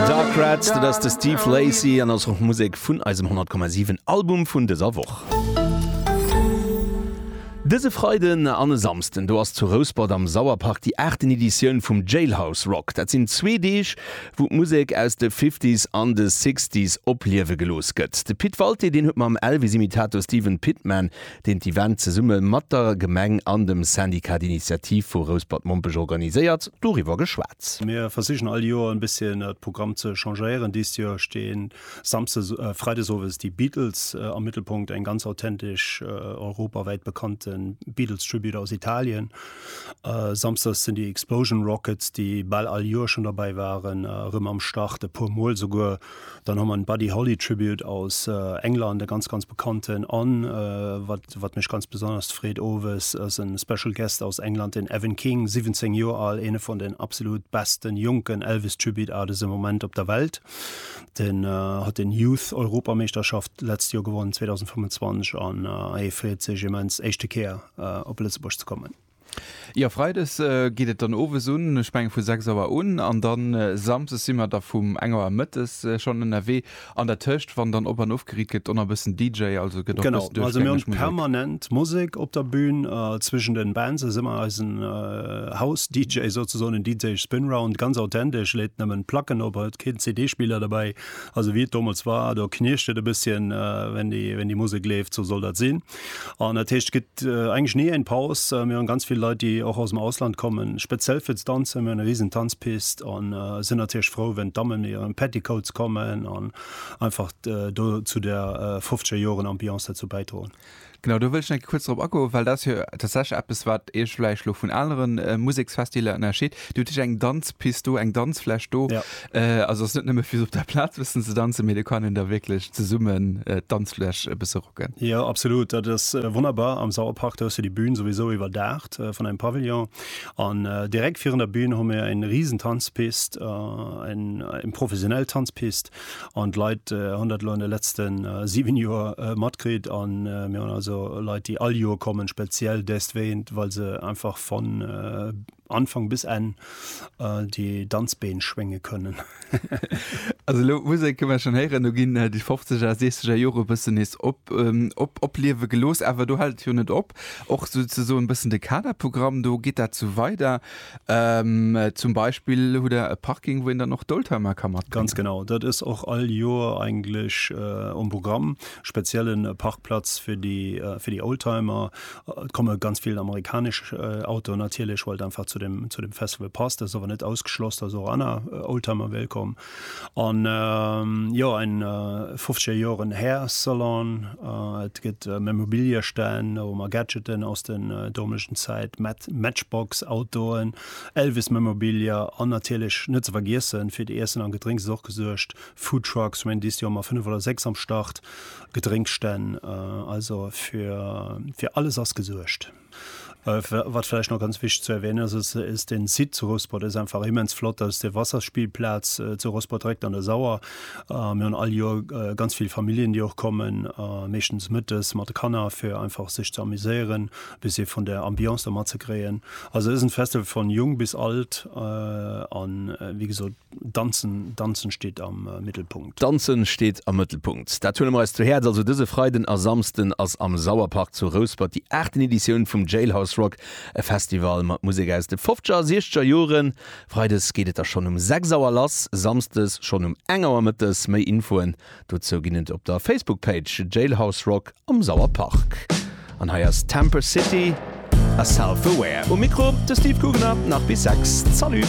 Dark Rats, dat ass de Steve Lacy an ass och Musek vun eisem 100,7 Album vun dëser Woch. Dëse Freiden an e Samsden, do ass zu Rouspert am Sauerpark déi aachten Editioun vum Jailhouse Rock. Dat sinn zwee Deeg, wou d'Musek aus de Fifties an de Sixties opliewe gelooss gëtt. De Pit Walté, deen huet mam Elvis-Imitator Steven Pitman deen d'Event zesumme mat der Gemeng an dem Syndicat d'Initiative vu Rouspert-Mompech organiséiert, doriwwer geschwat. Mir versichen all Joer en bësschen de Programm ze changéieren. Dëst Joer stinn Freiden Owes déi Beatles am Mëttelpunkt, eng ganz authentesch europawäit bekannten Beatles Tribute aus Italien. Samsdes sinn déi Explosion Rockets, déi bal all Joer schon derbäi waren, erëm am Start, e puer mol souguer. Dann hu mer en Buddy Holly Tribute aus England, e ganz, ganz bekannten. An wat, wat mech ganz besonnerst freet, owes ass e Special Guest aus England, den Evan King, 17 Joer al, eene vun den absolut besten jonken Elvis Tribute Artist am Moment op der Welt. Den huet den Youth Europameeschterschaft d'letzt Joer gewonnen, 2025, an hie freet sech immens, éischte Kéier op Lëtzebuerg ze kommen. Jo Freides geet et dann owes un, ech mengen vu 6 Auer un, an dann Samsdes si mer da vum eng Auer mëttes schonn ënnerwee. An der Tëscht wann dann op an of geriit gëtt, donner bëssen DJ, also gëtt och Genau, bëssen also mir duerchgängeg hunn Musek. permanent Musek op der Bühn. Zwëschen den Bands ass ëmmer eisen House DJ souzesoen, en DJ Spinround, ganz authentesch, leet nëmmen Placken op, huet keen CD Spiller derbäi, also wéi et domols war, do knirscht et e bësschen wenn déi Musek leeft, sou soll dat sinn. An dat heescht gëtt englech nie en Paus. Äh, mir hunn ganz vill Leit, déi och aus dem Ausland kommen, speziell fir ze danzen. Mir hunn e riesen Tanzpist an äh, sinn natierlech frou, wenn d'Damme mir hiren Petticoats kommen an einfach äh, do zu der äh, 50er Joren Ambiance derzou bäidroen. Genau, do wëll ech kuerz drop agoen, well dat jo tatsächlich eppes, wat Iech vläicht lo vun aneren äh, Museksfestiler ënnerscheet. Dir hutt hich eng Danzpist do, eng Danzfläch do. Ja. Äh, also ass net nëmme fir op der Plaz bëssen ze danzen, mee do kann een da wierklech zesummen äh, d'Danzfläch e bësse rocken. Jo, absolut. Dat ass äh, wonnerbar. Am Sauerpark, do hues du déi Bühn souwisou iwwerdaacht äh, vun engem Pavillon. An äh, direkt virun der Bühn hu mir eng risen Tanzpist, äh, eng eng professionell Tanzpist. An d'Leit äh, hunn dat elo an de letzten äh, 7 Joer äh, matkritt. An äh, mir hunn also Leit, déi all Joer kommen, speziell deswéint, well se einfach von äh, Anfang bis Enn äh, die Danzbeen schwénge kënnen. also lo Musik këmmer schon héieren, du ginn äh, die 50er, 60er Jore bëssen nees op, ähm, op, opliewe gelos, awer du halt jo net op. Och so ze so en bëssen de Kaderprogramm, do geet dat zu weider. Ähm, zum Beispiel hu der e Parking, wou en dann och d'Oldtimer kann mat. Ganz genau, dat is och all Joer eigentlich äh, um Programm, speziellen Parkplatz fir die, äh, fir die Oldtimer, Et komme ganz vill amerikanesch Autoen natierlech, well et einfach zu dem, zu dem Festival passt. Dat ass awer net ausgeschloss, dass och aner Oldtimer wéilt kommen. An jo, en 50 Joren Hair Salon, et gëtt Memorabilia-Stänn, da hu mer Gadgeten aus der domeschen Zäit, Matchbox Autoen, Elvis-Memorabilia an natierlech net ze vergiessen, fir d'Iessen an Gedrénks ass och gesuergt. Foodtrucks, ech mengen dëst Joer hu mer fënnef oder sechs am Start. Gedrénkstänn, also fir, fir alles ass gesuergt. Wat vläicht nach ganz wichteg ze erwänen ass, ass, ass den Site zu Rouspert, dat ass einfach immens flott, dat ass déi Wasserspielplaz zu Rouspert direkt an der Sauer. Mir hunn all Joer ganz vill Familljen, déi och kommen, meeschtens mëttes mat de Kanner, fir einfach sech ze amuséieren, e bëssi vun der Ambiance do matzekréien. Also et ass en Festival vun jung bis alt an, wéi gesot, Danzen, Danzen steet am Mittelpunkt. Danzen steet am Mëttelpunkt, dat huele mer eis zu Häerz. Also dëse Freiden a Samsden ass am Sauerpark zu Rouspert déi aachten Editioun vum Jailhouse Rock, e Festival mat Musek aus de fofzeger a siechzeger Joren. Freides geet et da schonn um 6 Auer lass, samsdes schonn um 1 Auer mëttes. Méi Infoen dozou ginn et op der Facebook-Page Jailhouse Rock am Sauerpark. An hei ass Temper City a Self Aware. Um Mikro de Steve Guggenab, nach bis 6, Salut!